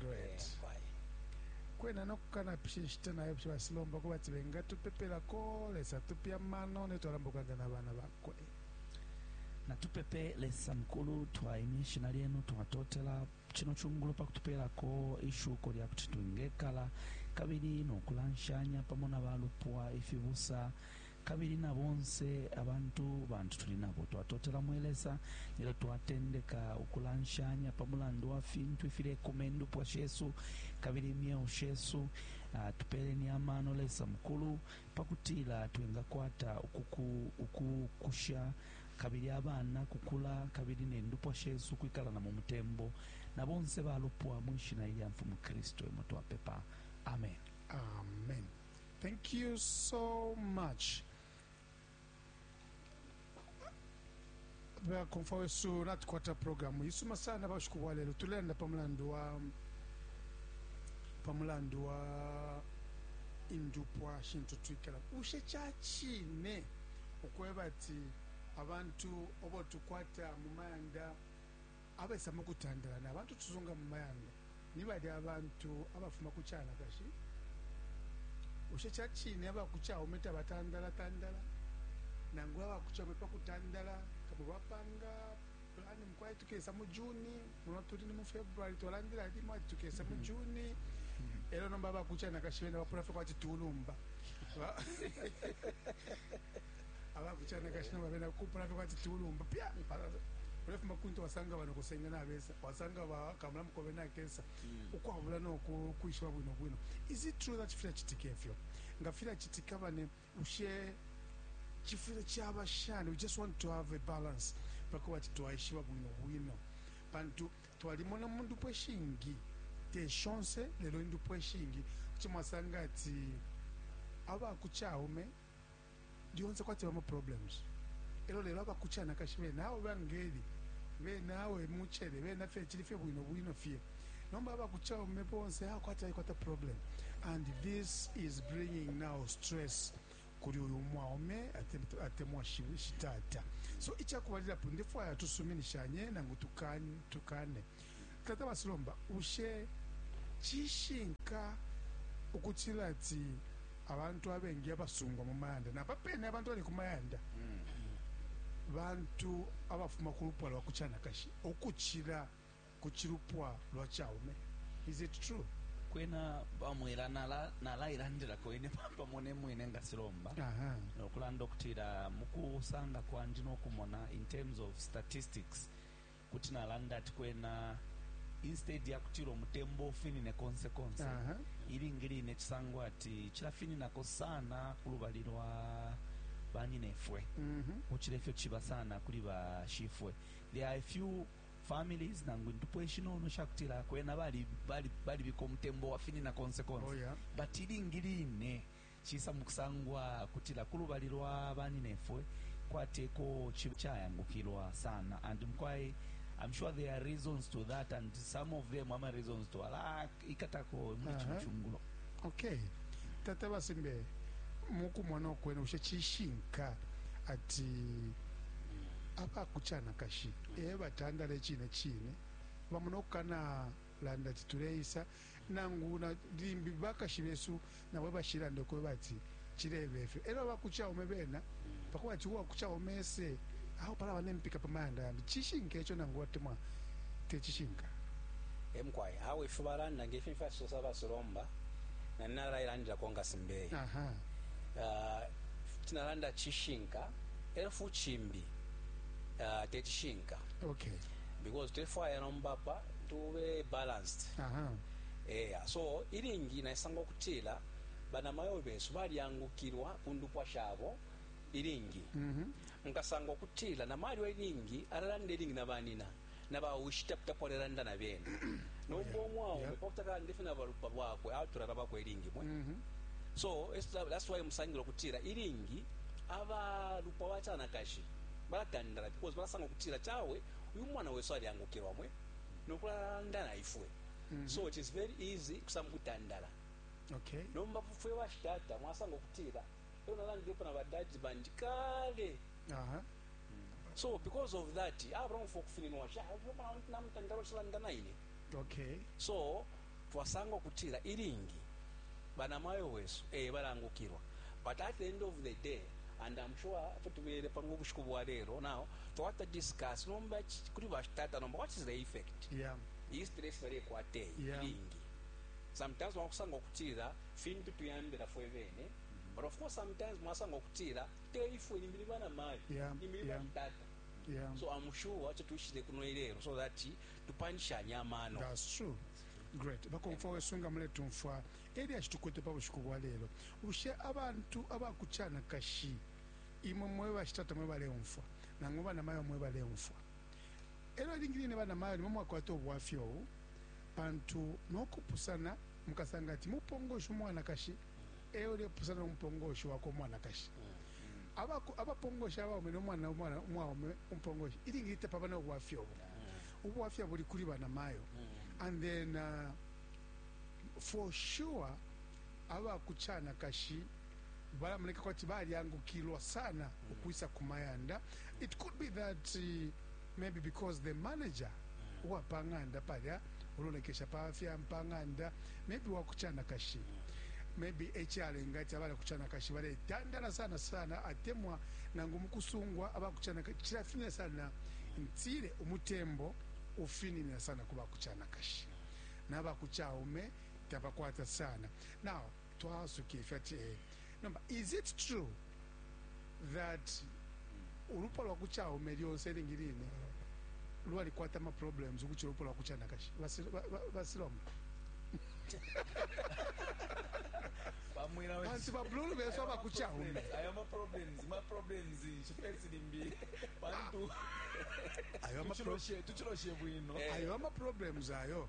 great kwena nokukanapisha inshita nayo psha basilomba kuba ati bengatupepelako lesa tupe amano netwalamba ukulanda na bana bakwe natupepe lesa mukulu twaimya ishina lyenu twatotela kino kyungulu pakutupeelako ishuko lya kuti twingekala kabili nokulanshanya pamo na balupwa ifibusa Kabili na bonse abantu bantu tuli nabo twatotela mwe Lesa nelyo twatendeka ukulanshanya pa mulandu wa fintu ifilekuma indupwa shesu kabili imyeo shesu. Tupeleni amano, Lesa mukulu, pakutila twingakwata ukuku ukukusha kabili abana kukula kabili ne ndupwa shesu ukwikala na mu mutembo na bonse ba lupwa mwi shina ilya mfumu Kristu emo twapepa. Ameni. Ameni. Thank you so much. bakomfwa wesu natukwata programu isuma sana bashiku bwa lelo tulenda pa mulandu wa pa mulandu wa indupwa shintu twikala bushe ca cine ukweba ati abantu obo tukwata mu mayanda Abaisa mu kutandala na bantu tusunga mu mayanda ni balya bantu abafuma ku canakashi. Bushe ca cine aba ku caume tabatandalatandala? Nangula aba ku caume pa kutandala kamo bapanga plani, mukwai tukesa mu June, muno tuli ni mu February, twalandila limo ati tukesa mu June, e lyo nomba aba ku canakashi bena bapula fye kwati tulumba. aba ku canakashi nabo bena kupula fye kwati ciulumba pya ulefuma kuntu wasanga bano kusenga nabesa wasanga bakamula mukobe nakesa hmm. ukwabula noku kwishiba bwino bwino is it true that fila chitika efyo nga fila chitika bane ushe chifile chaba shani we just want to have a balance pako bati twaishiba bwino bwino pantu twalimona mundu pweshingi te shonse lelo indu pweshingi kuchimwasanga ati aba kuchaume lyonse kwati bama problems elo lelo aba kuchanakashi bena awe bangeli bena awe muchele bena fye chili fye bwino bwino fye nomba aba kuchaume bonse awe kwati alikwata problem and this is bringing now stress kuli uyu mwaume atemwa shitata so ichakubalila po ndefwaya tusuminishanye nangu tukane, tukane. Tata Basilomba, bushe cishinka ukutila ati abantu abengi abasungwa mu mayanda napa pene abantu bali ku mayanda bantu abafuma ku lupwa lwa kucanakashi ukucila ku cilupwa lwa caume? Is it true? kwena bamwela nalailandilako nala ine papa mone mwine nga silomba nokulanda okutila mukusanga kwandi nokumona in terms of statistics kuti nalanda ati kwena instead ya kutila umutembo ufinine konse konse uh -huh. ilingi line cisangwa ati cilafininako sana ku lubali lwa banyinefwe mm -hmm. ucila ifyo ciba sana kuli bashifwe there are a few families nangu indupwa ishinono shakutila kwena balibika bali, bali umutembo wafinina konse konse oh, yeah. but ilingi line Cisa mu kusangwa kutila ku lubali lwa baninefwe kwati eko ciba icayangukilwa sana and mukwai I'm sure there are reasons to that and some of them ama reasons to ala ikatako muli cino Aha. cungulo okay tata basimbe mukumona okwene bushe cishinka ati abakucanakashi e batandala ecine cine bamona okukana landa ati tuleisa Nangu na limbi bakashi besu nabo ebashilanda ukweba ati cileba ifyo. Elyo abaku Chaume bena pakweba ati uwaku Chaume ese, awe palaba ne mpika pa mayanda yambi. Cishinka ico nangu atemwa te cishinka? E mukwai. Awe ifyo balanda nge fi fyacisosa ba Silomba, nandi nalailandilako nga Simbeye. Aha. Ifi nalanda cishinka, elyo fu cimbi te cishinka. Okay. Because tulefwaya nomba apa. tube balanced Aha. eya so ilingi naisanga ukutila banamayo besu balyangukilwa ku ndupwa shabo ilingi Mhm. nkasanga ukutila namalyo ilingi alalanda ilingi na banina na bawishi tapitapo alelanda na bene nomba omwaume Yeah. pakuti akalanda ifyo na balupwa lwakwe atulala bakwe ilingi mwe Mhm. so it's- that's why musangila ukutila ilingi abalupwa bacanakashi balatandala because balasanga ukutila cawe uyu mwana wesu alyangukilwa mwe no kulalanda na ifwe mm -hmm. so it is very easy kusanga ukutandala okay. nomba fwe bashitata mwasanga ukutila elo nalandilepo na badadi bandi kale uh -huh. mm. so because of that abraham fo kufininwa sha namutandala ushilanda naine okay. so twasanga ukutila ilingi banamayo wesu ee balangukilwa but at the end of the day and am sure efyo tubele pano ubushiku bwa lelo now twata discuss nomba kuli bashitata nomba what is the effect yeah. iyi stress balekwata eyi yeah. ilingi sometimes mwakusanga ukutila fintu tuyambila fwe bene mm-hmm. but of course sometimes mwasanga ukutila te ifwe imbili banamayo yeah. imbili yeah. bashitata yeah. so am sure acho tuishile kuno ilelo so that tupanshanye amano. That's true. Great. Bakomfwa wesu nga muletumfwa elyashi tukwete pa bushiku bwa lelo. Bushe abantu aba ku Chanakashi imwe mwe bashitata mwe baleumfwa nangu bana mayo mwe baleumfwa? Elyo ilingi line bana mayo nimwe mwakwata ubwafya ubu pantu nokupusana mukasanga ati mupongoshi umwanakashi e ulepusana no mupongoshi wakwe umwanakashi. Abapongoshi abaume no mwana umwaume umupongoshi ilingi line tapaba na ubwafya ubu. Ubwafya buli kuli banamayo. And then, uh, for sure, aba ku canakashi balamoneka kwati balyangukilwa sana ukwisa ku mayanda. It could be that uh, maybe because the manager uwa pa ng'anda palya ulolekesha pa fya pa ng'anda maybe wa ku canakashi maybe e calenga ati abali ku canakashi baletandala sana sana atemwa nangu mu kusungwa aba ku canakashi cilafinina sana ntile umutembo ufininina sana ku ba ku canakashi naba ku caume tabakwata sana now twasuke ifyo ati eh, nomba is it true that ulupwa lwa kuchaume lyonse ilingi line lwalikwata ama problems ukuchira ulupwa lwa kuchanakashi Basi- ba- ba- basilamu bamwira we- pansi babululu besu Aya ma abakuchaume problems, aya ma problems ma problems chifesi limbi pantu ayo ama pro- tuchiloshe tuchiloshe bwino Eh. ayo ama problems ayo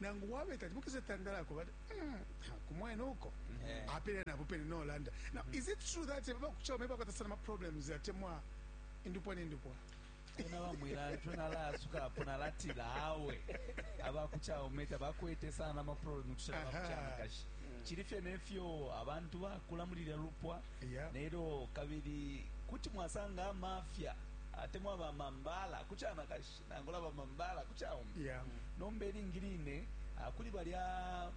nangu bwabe tati bukese tandala ko bati mm, kumwena uko eh. apele napo pene no landa now mm. is it true that baba kuchao meba kwata sana ma problems ya temwa indupwa ni indupwa kuna bamwira ntu nalasuka apo nalatira awe abakuchao meta bakwete sana ma problems kuchira bakuchana kashi mm. chiri fye nefyo abantu bakula muri lya lupwa yeah. nero kabiri kuti mwasanga amafya atemwa bamambala kuchana kashi nangula bamambala ku caume yeah. nomba ilingi line ah, kuli balya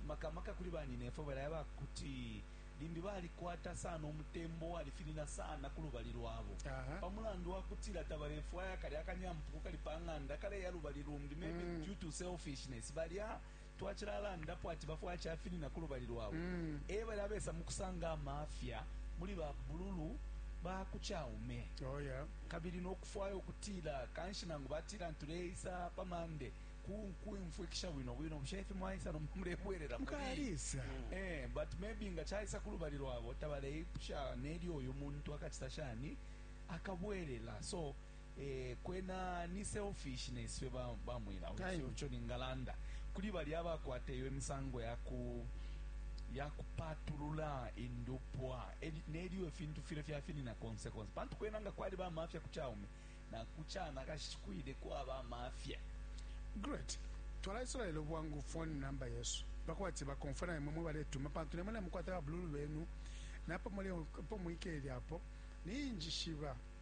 makamaka kuli banyinefwe balaya bakuti limbi balikwata sana umutembo walifinina sana ku lubali lwabo uh -huh. pa mulandu wa kutila tabalefwaya kali akanyampuku kali pa ng'anda kaleya lubali lumbi maybe mm. due to selfishness balya twacilalandapo ati bafwaya cafinina ku lubali lwabo e balya abesa mu kusanga amafya muli ba bululu ba ku caume kabili no kufwaya ukutila kanshi nangu batila tuleisa pa Monday kuumfwikisha bwino bwino bushe ifi mwaisa nomba mulebwelela mukalisa eh but maybe nga caisa ku lubali lwabo tabaleipusha nelyo uyu muntu akacita shani akabwelela so Eh, kwena ni selfish neswe ba, ba mwila Time. ucho ningalanda kuli bali abakwata iyo misango yaku yakupatulula indupwa eli- nelyo ifintu file fyafinina konse konse pantu kwena nga kwali bamafya ku chaume na ku chana kashikwile kwaba amafya great twalaisula lelo bwangu phone number yesu bakwati bakonfona imwe mwe baletuma pantu nemwe namukwata babululu benu napo muli po mwikele apo ninjishiba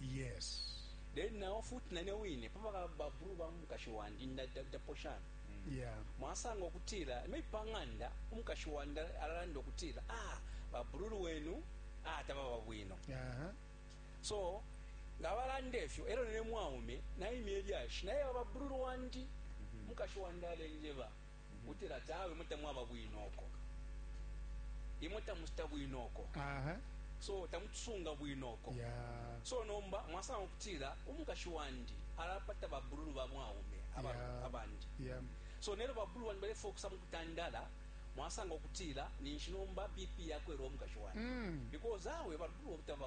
Yes. Then nao futi nane wine papa babulu ba mukashi wandi ndaposhana mm. yeah. mwasanga okutila maybe pang'anda umukashi wandi alalanda okutila ah babululu wenu ah tababa bwino uh -huh. so nga balanda efyo elo nene mwaume naimya elyashi naye bababululu wandi mm-hmm. mukashi wandi alenjeba Utila ati awe imwe tamwaba bwino uko. Imwe tamuchita bwino uko. Aha. So tamutusunga bwino uko. Yeah. So nomba mwasanga ukutila umukashi wandi alapata babululu ba mwaume aba, yeah. abandi. Yeah. So nero babululu wandi bale fokusa mukutandala mwasanga ukutila ninshi nomba BP yakwera umukashi wandi. Mm. Because awe babululu obutaba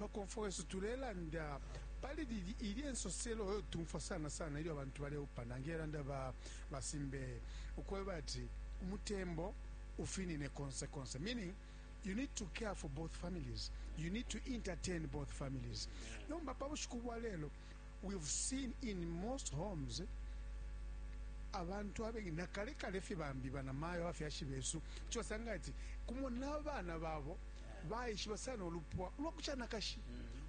Bakomfwa wesu tulelanda pali lili ilye nsoselo yo tumfwa sana sana ilyo abantu baleupana nge landa ba ba Simbeye ukweba ati umutembo ufinine konse konse meaning you need to care for both families you need to entertain both families nomba pa bushiku bwa lelo we've seen in most homes abantu abengi nakale kale fye bambi banamayo abafyashi besu kuco basanga ati kumo n'abana babo baishiba sana ulupwa ulwa ku canakashi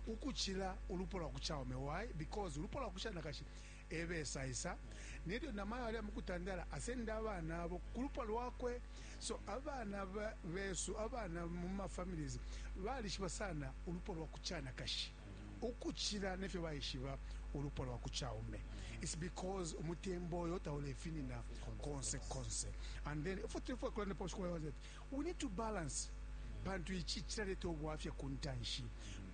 ukucila ulupwa lwa ku caume why because ulupwa lwa ku canakashi ebesaisa nelyo namayo aliya mu kutandala asenda abana abo ku lupwa lwakwe so abana ba- besu abana mu mafamilies balishiba sana ulupwa lwa ku canakashi ukucila nefyo baishiba ulupwa lwa ku caume its because umutembo oyo taulefinina konse konse and then ifwe tulifwe kulanda pa bushiku bwa Yehova ati, We need to balance pantu ici cilaleta ubwafya kuntanshi.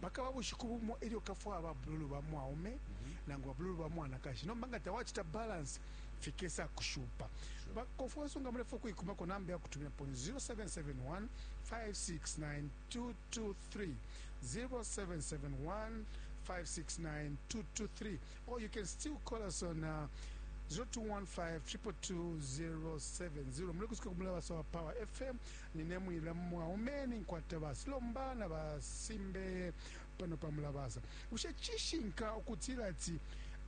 Pakaba bushiku bumo ilyo ukafwaya ba bululu ba mwaume nangu ba bululu ba mwanakashi, nomba nga tawacita balance fikesa kushupa. Ba Kofuenso nga mulefwaya ukuikumako number yakutuminapo ni 0771569223, 0771569223. or you can still call us on uh, 0215222070 mulikusuka kumulabasa wa power fm ninemwila mwaume ninkwata basilomba na basimbe pano pa mulabasa bushe cishinka ukutila ati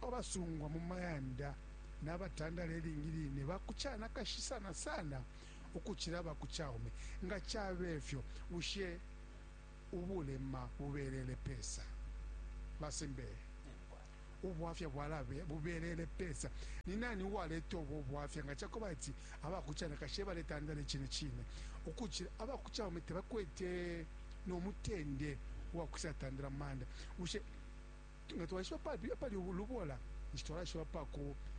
abasungwa mu mayanda n'abatandala elingi line bakucana kashi sana sana ukucila bakucaume nga cabe fyo bushe ubulema bubelele pesa? Ba Simbeye, ubwafya bwala bubelele pesa? Ni nani uwaleta ubo bwafya nga ca kweba ati aba ku canakashi e baletandala icine cine ukucila aba ku caume? Tabakwete no mutende uwa kwisatandala mu mayanda. Bushe Nga twaishiba apali ulubola, ninshi twalaishiba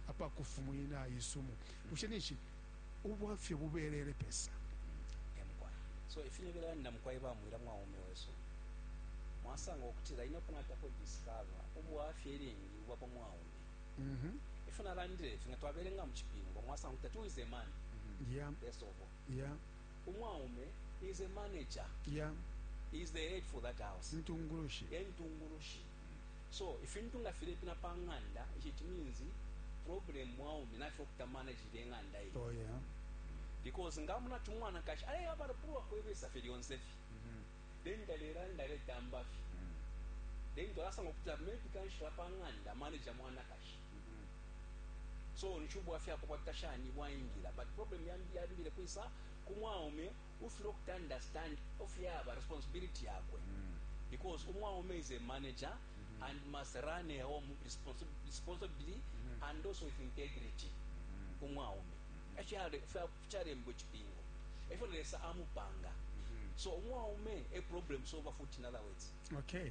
apa kufumwina isumu. Bushe ninshi ubwafya bubelele pesa? Ee mukwai. So ifi ne belanda mukwai ba Mwila mwaume wesu, mwasanga ukutila ine uko natako discover ubwafya ilingi bwa pa mwaume. Ifyo nalandile ifi, nga twabelenga mu Cipingo, mwasanga ukutila, two is a man, first of all. Umwaume is a manager. Yeah. He is the head for that house. Intungulushi. Yeah, intungulushi. So, ifintu nga filepina pa nganda, it means problem mwaume na fyo kuta manage the nganda hii. Oh yeah. Because nga muna tumwana kashi, ale ya bara pulwa kwebesa fye lyonse fye. Mm -hmm. Then dalera ndare tamba fye. Mm -hmm. Then twalasa ngokuta maybe kanshi la pa nganda manager mwana kashi. So nishi ubwafya akobwakita shani bwaingila but problem yambi yambile kwisa ku mwaume ufile ukuta understand ofyaba responsibility yakwe because umwaume is a manager and must run a home responsi- responsibly and also with integrity umwaume Efyale- fya- fyalembwa icipingo efyo lesa amupanga so umwaume a problem solver futi in other words okay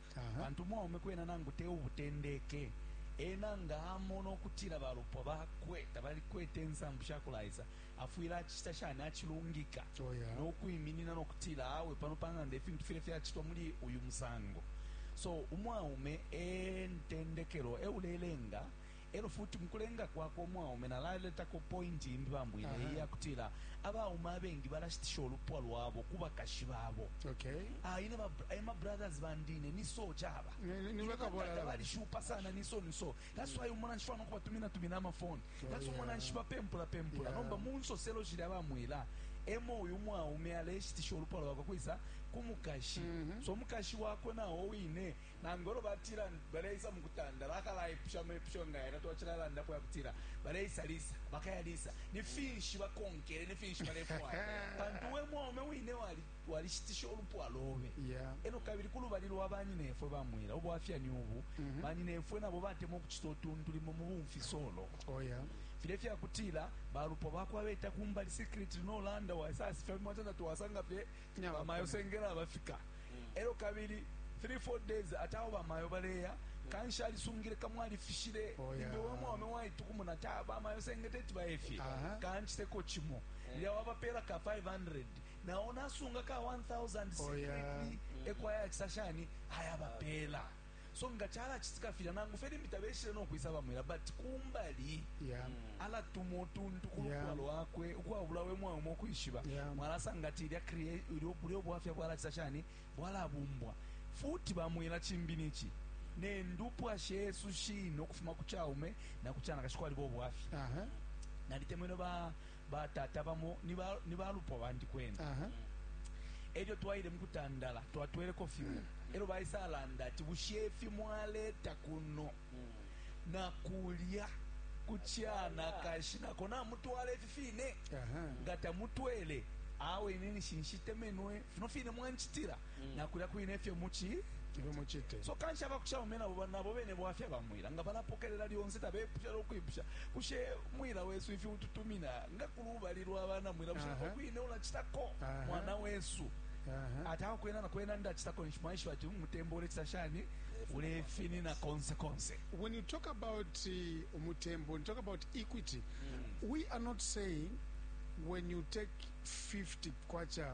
pantu umwaume kwena nangu te ubutendeke, ena nga amona ukutila balupwa bakwe tabalikwete insambu sha kulaisa, afwile acicita shani? Acilungika oh, yeah. no kwiminina no kutila awe, pano pa ng'anda ifintu file fyacitwa muli uyu musango. So umwaume e ntendekelo, e ulelenga E lyo futi, mu kulenga kwakwe umwaume, nalaletako pointi imbi, bambwile, iyi ya kutila abaume abengi balashitisha ulupwa lwabo ku bakashi babo. Okay. Ah, ine ba eh, ma brothers bandi ine ni so chaba. Ni ba kabola la. Bali shupa sana ni so ni so. That's why umona nshwa nokuba tumina tumina ama phone. Oh, That's umona nshwa pempula pempula. Nomba munso selo jira ba mwila. Emo uyu mwaume aleshitisha ulupwa lwakwe kwisa kumukashi. Mm-hmm. So mukashi wakwe na owine Nangu elyo batila baleisa mukutanda, bakalaipusha amepusho nga yalya twacilalandapo ayakutila, Baleisa lisa? Bakaya lisa? Ni finshi bakonkele? Ni finshi balefwaya? Pantu we mwaume wine walishitisha ulupwa lobe. Elyo kabili ku lubali lwa banyinefwe ba mwela, ubwafya ni ubu, banyinefwe nabo batemwa ukucita utuntu limo mu bumfisolo. Filya ifyakutila balupwa bakwe abeta kumbali secretly no landa, waisasifya fimo atila, Tatwasangafye. bamayo sengela bafika elo kabili 3 4 days ati awo bamayo baleya kanshi alisungile kamo alifishile oh, yeah. imbe wamwaume waitukumuna ati ah, bamayo senge teti bayefye uh -huh. kanchiteko chimo yeah. lya wabapela ka 500 nawo nasunga ka 1000 secretly oh, yeah. ekwaya chisashani ayabapela so nga chalachitika filya nangu fye limbi tabeshile no kwisa bamwila but kumbali yeah. alatuma utuntu kulukwa yeah. lwakwe ukwabula we mwaume ukwishiba yeah. mwalasanga ati ilya bulyo bwafya bwalachisa shani bwalabumbwa futi bamwila chimbi nichi nendupwa shesu shino ukufuma ku chaume na kuchana kashikwa libo bwafya uh -huh. nalitemwene ba Batata bamo ni balupwa bandi kwena. E lyo twaile mu kutandala, twatweleko fimo e lyo baisalanda ati, Bushe ifi mwaleta kuno na kulya ku canakashi na ko namutwala ifi fine? Nga tamutwele, awe ine ninshi nshitemenwe fino fine mwancitila. mm. na kulya kwine efyo muchi ibe muchite so kanshi abakuchita bamwe nabo nabo bene bwafya bamwira nga balapokelela lyonse tabepusha lokwipusha kushe mwira wesu ifi ututumina nga kuli ubali lwa bana mwira busha kwine ulachitako mwana wesu uh -huh. ati aho kwena na kwena ndachitako nishimwaishiwa ati umutembo ulechita shani ulefinina konse konse when you talk about uh, umutembo when you talk about equity mm. we are not saying when you take 50 kwacha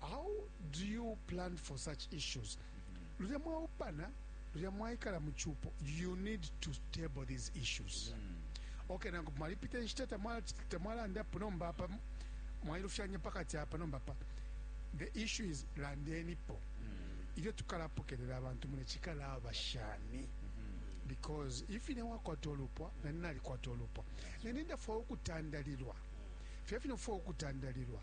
how do you plan for such issues lulya mwaupana lulya mwaikala mu cupo you need to table these issues mm. okay nangu mwalipita inshita tamwalandapo nomba apa mwailufyanya pakati apa nomba pa the issue is landenipo mm. ilyo tukalapokelela abantu mune cikalaba shani mm-hmm. because if ine wakwata olupwa nani nalikwata olupwa nani ndafwaya ukutandalilwa fye fino fwaya ukutandalilwa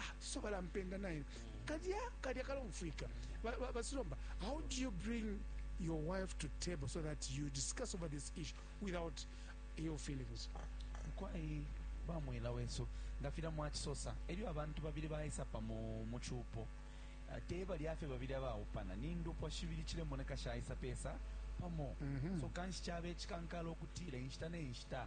ah so balampenda naye kalya kalya kalomfwika basilomba how do you bring your wife to table so that you discuss over this issue without your feelings kwai bamwela wesu nga fila mwachisosa elyo abantu babili baisa pamo mu chupo ah, te balyafe babili abaupana ni ndupwa shibili chilemoneka shaisa pesa pamo mm -hmm. so kanshi chaba echikankala okutila inshita ne nshita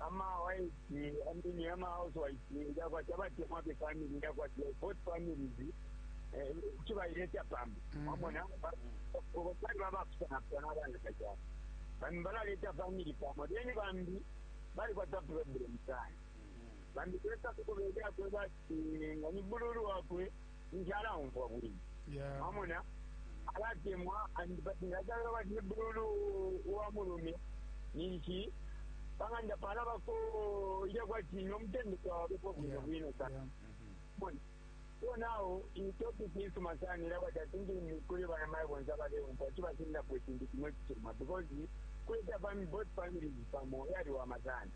ama wife I mean ama housewife nja kwati abatemwa be family nja kwati like hot families eh kibayileta pamo mwamona kubo pali babafuna pano abana kajana bambi balaleta family pamo then bambi bali kwata problem sana bambi kwesa kukubeja kwebati nga ni bululu wakwe ninshi alaumfwa bwino. Yeah. Mwamona? Alatemwa and but ngatalala bati ni bululu wa mulume ninshi pang'anda palabako ilya kwati nomutende twawabepo bwino Yeah. bwino sana. Yeah. Mbona. So now in topic isuma sana era bati I think ni kuli bana mayi bonse abaleumfwa kibasindapo ekintu kimwe kisuma because kuleta fami both families pamo yaliwama sana.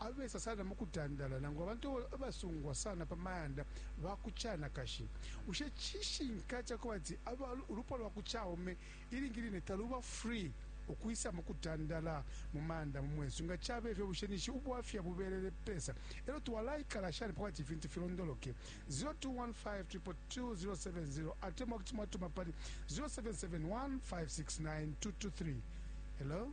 abesa sana mu kutandala, nangu abantu abasungwa sana pa mayanda ba ku canakashi. Bushe cishinka ca kubati aba ulupwa lwa ku caume ilingi line taluba free ukwisa mu kutandala mu mayanda mu mwesu? Nga cabe fyo, bushe ninshi ubwafya bubelele pesa, e lyo twalaikala shani pa kubati ifintu filondoloke? 0 215 222 070 atemwa kuti mwatuma pali 0 771 569 223. Hello?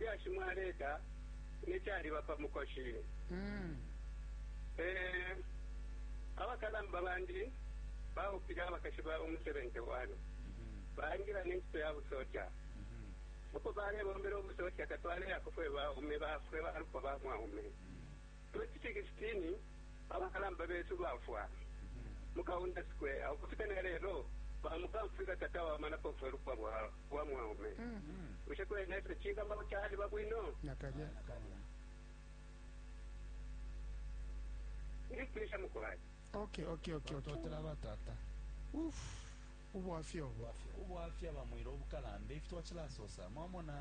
lyashi mwaleta ne caliba pa mukoshi. Ee, abakalamba bandi baupile abakashi babo mu 71, baingila ne ncito ya busoja. Uko balebombela ubusoja tatwaleyako fwe baume ba fwe balupwa ba mwaume. 2016 Abakalamba Besu Bafwa mu Kaunda Square Ukufika ne lelo bamukamfwilwa tatwawamanapo fwe lupwa lwa mwaume. Bushe kwena ifyo cingabako caliba bwino? Nakalya. Ndipwisha mukwai. Okay, okay, okay, okay. Totela batata. Uff. ubwafya ubu. Ubwafya, ubwafya bamwira ubukalamba ifi twachilasosa mwamona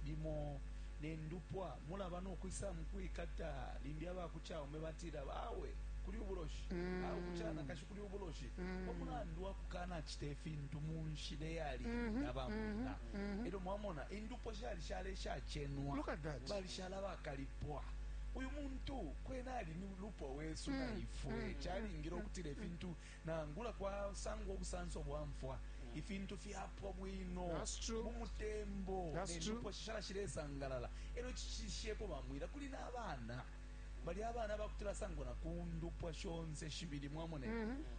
limo nendupwa mulaba nokwisa mukwikata limbi abakuchaume batila awe kuli ubuloshi mm. awe kuchanakashi kuli ubuloshi mm. pamulandu wakukanachita ifintu munshila eyali mm -hmm. nabamuna mm -hmm. elyo mwamona indupwa shali shale shachenwa balishala bakalipwa uyu muntu kwena ali ni lupwa wesu mm. na ifwe mm. chalingile ukutila ifintu Nangula kwasangwa ubusanso bwa mfwa, ifintu fyapwa bwino mu mutembo, ne ndupwa shishala shilesangalala. E lyo icicishisheko bamwila kuli na bana. Balya abana ba kuti basangwa na ku ndupwa shonse shibili, mwamona.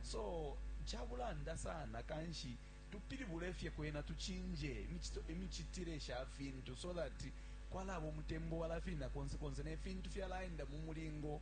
So, ca bulanda sana kanshi tupilibule fye kwena tucinje imicitile sha fintu so that kwalaba umutembo walafina konse konse ne fintu fyalaenda mu mulingo.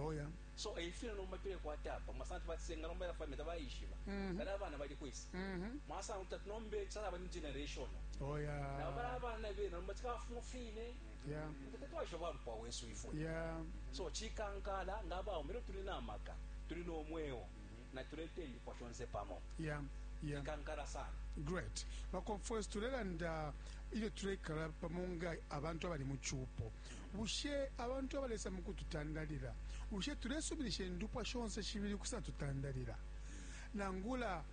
Oya. So eifyo eh, nomba tule kwata apa mwasanga tubachisenga nomba yafwa meta bayishiba mm -hmm. kana abana bali kwisa mm -hmm. mwasanga kuti tunombe chala bani generation oya oh, na bana abana bena nomba chikafumu fine yeah tatwasho bali kwa wesu ifo yeah so chikankala ngaba umiro tuli na maka tuli no mweo mm -hmm. na tulete ndi kwa shonse pamo yeah yeah. chikankala sana great bakonfwesi tulelanda ilyo tulekala pamo nga abantu abali mu chupo Bushe abantu abalesa mu kututandalila, bushe tulesuminisha indupwa shonse shibili ukusatutandalila? Nangula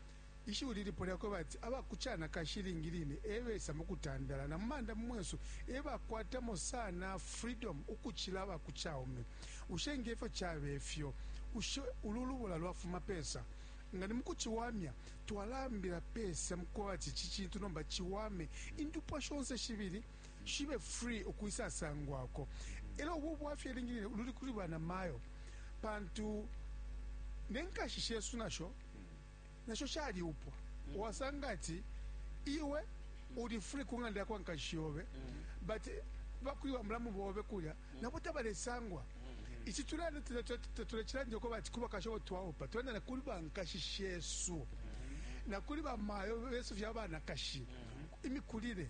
ishiwi lilipo lya kweba ati aba ku canakashi ilingi line e besa mu kutandala na mu manda mu mwesu e bakwatamo sana freedom ukucila aba ku caume. Bushe nge fyo cabe fyo, bushe ulu lubola lwafuma pesa? Nga ni mu kuciwamya, twalaambila pesa mu kweba ati ici cintu nomba ciwame indupwa shonse shibili? shibe free ukwisa sangwako. Elo ubu bwafya ilingi line ululi kuli bana mayo pantu nenkashi shesu nasho nasho shali upwa wasanga ati iwe uli free ku ng'anda yakwa nkashi yobe but bakuli bamulamu bobe kulya nabo tabalesangwa ici tulanda tulecilandile ko bati kuba kasho twaupa tulanda na kuli bankashi shesu na kuli bamayo besu fya banakashi imikulile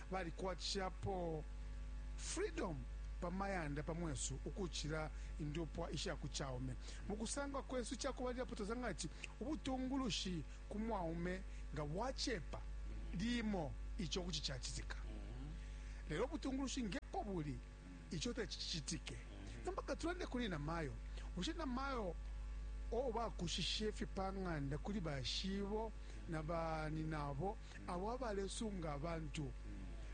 Balikwatishapo freedom pa mayanda pa mwesu ukucila indupwa isha ku caume. Mu kusangwa kwesu icakubalilapo twasanga ati ubutungulushi ku mwaume nga bwacepa limo ico kuti cacitika, lelo ubutungulushi ngepo buli ico teti cicitike. Nomba katulande kuli na mayo. Bushe na mayo o bakushishefye pa ng'anda kuli bashibo na ba ninabo? abo abalesunga abantu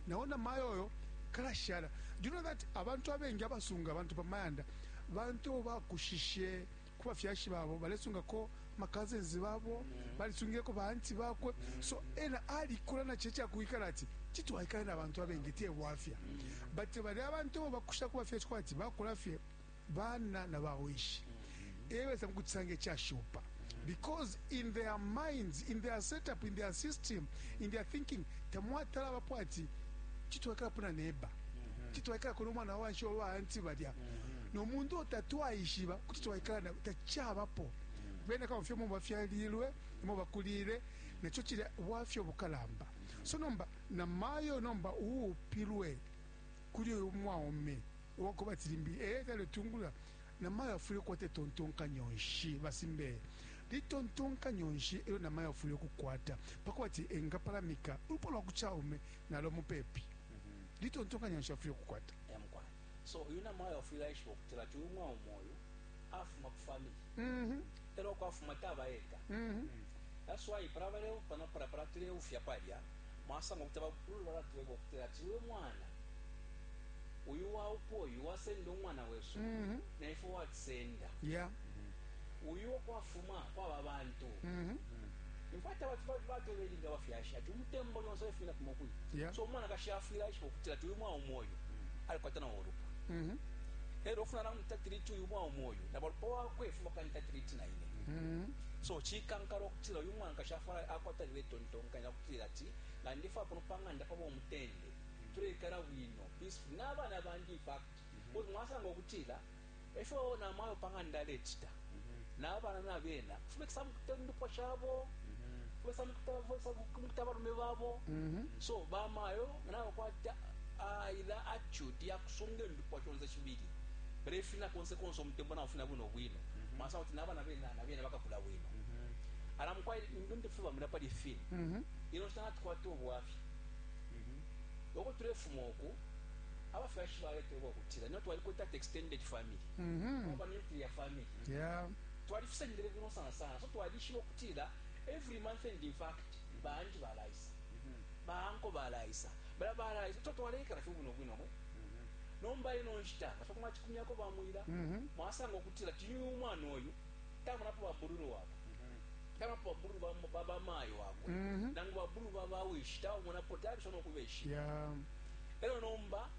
nao na mayo oyo kalashala do you know that abantu abengi abasunga abantu pa mayanda bantu abo bakushishe ku bafyashi babo balesungako macousins babo balisungileko baanti bakwe so ena alikula na checha kuikala ati titwaikale na bantu abengi te bwafya but bali abantu abo bakusha ku bafyashi kwa ati bakula fye bana na bawishi e baisa mu kucisanga icashupa because in their minds in their setup in their system in their thinking tamwatala bapo ati citwaikalapo na neba citwaikalako nomwana wanshi wa baanti balya nomuntu otatwaishiba kuti twaikala na tacabapo bene kabafye mu bafyalilwe mu bakulile naco cilya bwafyo bukalamba so nomba na mayo nomba uupilwe kuli uyu mwaume uwa kubati limbi e taletungulula, namayo afwile ukukwata itontonkanyo nshi? Ba Simbeye, litontonkanyo nshi elyo namayo afwile ukukwata pakubati engapalamika ulupwa lwa ku caume nalo mupepi? Litontonkanyo nshi afwile ukukwata? Emukwane. So uyu namayo afwile aishiba ukutilati uyu mwaume uyu afuma ku family mm -hmm. elo uko afuma taba eka mm -hmm. that's why para baleupa no para para tuleufya palya mwasanga ukuti abakulu balatweba ukuti ati we mwana uyu waupa uyu wasenda umwana wesu mm -hmm. naifwe watisenda yeah. mm -hmm. uyu okwafuma kwaba bantu mm -hmm. Imfwatawati batobelinga abafyashi ati umutembo lyonse alefumina kumo kuli yeah. so umwanakashi afwile aishiba ukutila ti uyu mwaume uyu alikwata nawo ulupwa mm -hmm. elo ofuna namwita tiriti uyu mwaume uyu na balupwa wakwe fuma kanita tiriti na ine mm -hmm. so chikankala okutila uyu mwanakashi afwala akwata liwe tontonkanya okutila ati nga ndifa kuno panganda pabo mutende tuleikala bwino peaceful nabana bandi fact mm -hmm. mwasanga okutila Efyo namayo pa ng'anda alecita, nabana nabena kufumekisa mukita indupwa shabo, kufumekisa mukita kufumekisa mukita abalume babo. So bamayo nganaba kwata ila attitude yakusunga indupwa shonse shibili, balefina konse konse umutembo naufina bwino bwino, mwasanga kuti nabana bena nabena bakakula bwino. Ala mukwai ndu ndefweba mwila pali ifine ino nshita natukwata ubwafya uko tulefuma uku abafyashi baleta ubo. tila no twalikwete ati extended family mm -hmm. kwaba nuclear family yeah. twalifisalile bwino sana sana so twalishiba okutila every month and in fact banji balaisa mm -hmm. baanko balaisa bala balaisa to twalekala fye bwino bwino mwe mm-hmm. nomba ino nshita nga fakumachikumyako bamwila mm-hmm. mwasanga okutila tiyu umwana oyu tamunapo babululu wabo taba pa bulu ba ba ba mayo wabo mm -hmm. nangu ba bulu ba ba wishi tawo mona potari shono kubeshi yeah. elo nomba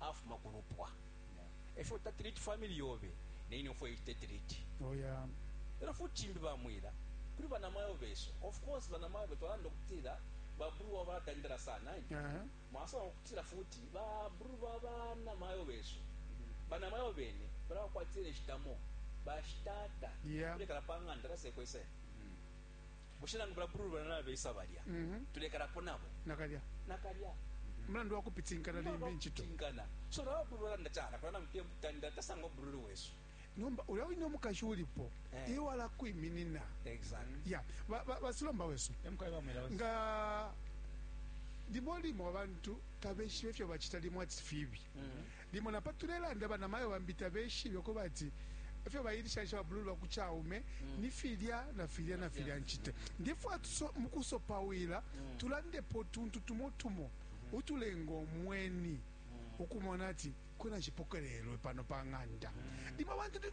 afuma ku lupwa e fyo ta treat family yobe ne ine fo ite treat oh yeah e lyo futi cimbi ba mwila kuli banamayo besu of course banamayo be twalanda ukutila ba bru wa bala tandela sana uh -huh. mwasanga ukutila futi ba bru ba banamayo besu banamayo bene bala bakwatile shitamo bashitata yeah. kulekala pa nganda la sekwe se mm. bushe nangu bulabululubana nabeisa balya mm-hmm. tulekalapo nabo nakalya nakalya mulandu wa kupitinkana limbi incito so nawe bulu walanda cala kulana mupia mutanda tasanga obululu wesu nomba ulya wine omukashi ulipo eh. iwe walakwiminina ya basilomba wesu nga limo limo abantu tabeshiba ifyo bacita limo ati fibi mm-hmm. Limo na pa tulelanda banamayo bambi tabeshibe uko bati efyo bailishanisha ba blue lwa ku caume ni filya na filya na filya ncita. Ndefwaya tuso mu kusopawila tulandepo utuntu tumo tumo utulenga umweni ukumona ati kwena nshipokelelwe pano pa ng'anda. Limo abantu ni.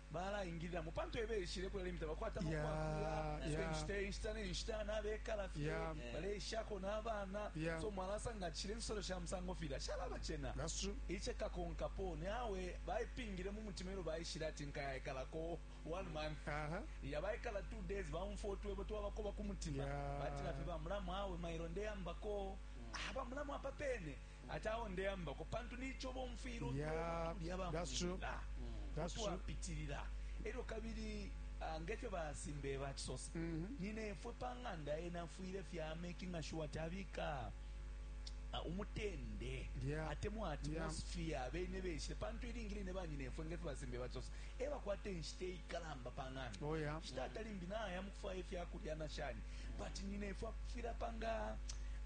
balaingililamo pantu ebeishile kula limita bakwata mukwakulaa yeah. inshita inshita nenshita nabekala fye yeah. baleishako nabana yeah. so mwalasanga chile nsolo sha musango filya shalaba chena iche kakonkapo nawe baipingile mu mutima elo baishile ati nkayaekalako one month uh -huh. ya baikala two days baumfotwebo twabakoba ku mutima yeah. batila fye bamulamu awe mailo ndeyambako mm. ah, bamulamu apa pene Ati awo ndeambako pantu nico bomfwila ulya yeah, tuli abamwila utwapitilila elyo kabili uh, ngefyo basimbe bachisosa mm -hmm. ninefwe pa ng'anda ena afwile fya making sure ati abika uh, umutende yeah. atemwa atmosphere yeah. bene beshile pantu ilingi line banyinefwe ngefyo basimbe bachisosa e bakwata inshita iikalamba pa ng'anda. Oh, yeah. Shi tata limbi naya mu kufwaya ifya kulya na shani but nyinefwe akufwila panga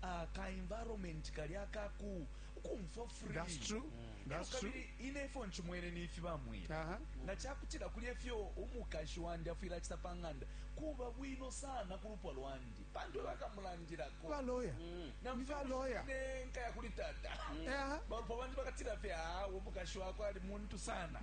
ah, ka environment kali akaku ukumfwa free That's true. Mm. That's Elo true. kabili inefwe nchimwene nifi bamwira Aha. nga chakutila kuli efyo umukashi wandi afwile achita pa ng'anda kuba bwino sana ku lupwa lwandi pantu ebakamulandilako baloya ni baloya nkaya kuli tata balopo bandi bakatila fye awe umukashi wakwe ali muntu sana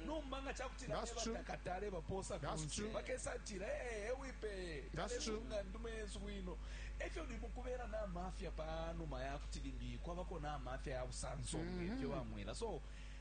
nomba nga cakutila ebatakatale baposa kunse bakesa tila ee ewipeye talesunga ndume yesu bwino efyo ndi mukubera n'amafya pa numa ya kuti limbi kwabako n'amafya ya busanso mm-hmm. ngefyo bamwela so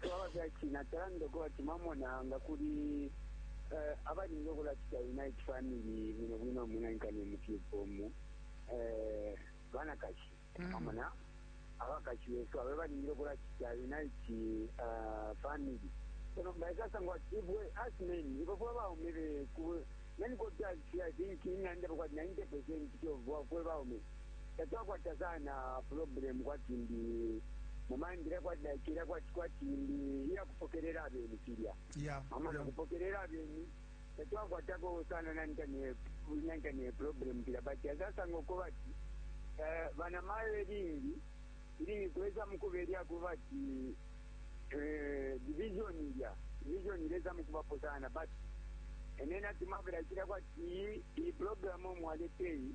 twaba fya china talanda ko ati mamona nga kuli eh, abalinga okulacita unite family bwino bwino munankani mukikomu eh, banakashi Mm. mamona abakashi besu abe balingile okulacita unite eh, family eno baikasangwa ati ibwe as men ibo fwe baume beku nanikotasia think inanda bwati 90 percent kyobwa fwe baume tatwakwata sana problem kwati ndi mu mind ilya kwati like ilya kwati kwati ndi iya kupokelela abeni filya yeah mama yeah nokupokelela abeni tatwakwatako sana nantane nantane problem filya but azasanga uko bati eh, banamayo elingi ilingi kuweza mukubelya kuba ati eh, division ilya division ileza mukubapo sana but enena timabila chila kwati iyi iyi program omwaleteyi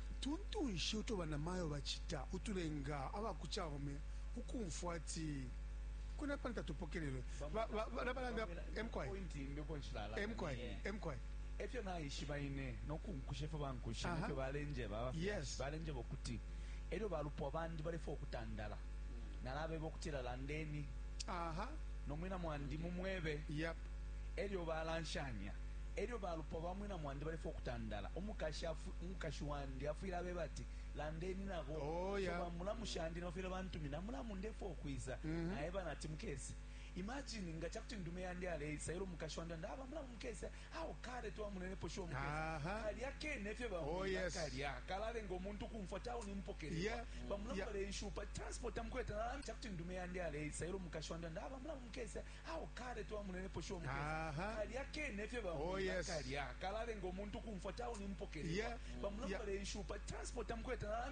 Tuntu nshi uto banamayo bacita utulenga aba ku caume ukumfwa ati, Kwena pano tatupokelelwe? E fyo naishiba ine no kunkusha ifyo bankusha ne fyo balenjeba abafyashi. Balenjeba ukuti e lyo balupwa bandi balefwaya ukutandala, nalabeba ukutila, Landeni no mwina mwandi mumwebe. E lyo balanshanya. E lyo balupwa ba mwina mwandi balefwaya ukutandala, umukashi umukashi wandi afwile abeba ati landeni nabo oh, yeah. so bamulamu shandi nabafwile bantumina mulamu ndefwa ukwiza mm -hmm. naeba nati mukese imagine nga chakuti ndume yandi aleisa ilo mukashi wandi andi aba mulamu mukese awo kale twamunenepo shiwo mukese kalya kene efyo bamwila oh, yes. kalya kalalenga omuntu kumfwa tawo nimpokelera yeah. bamulamu yeah. balenshupa transport amukweta nalambi chakuti ndume yandi aleisa ilo mukashi wandi andi aba mulamu mukese Awe kale twamunenepo sho mukesa. Kalya kene efyo ba oh, yes. kalya. Kalalenga umuntu kumfwa tauni mpokelelwa. Yeah. Bamulamba yeah. lenshi upa transport amukweta nalami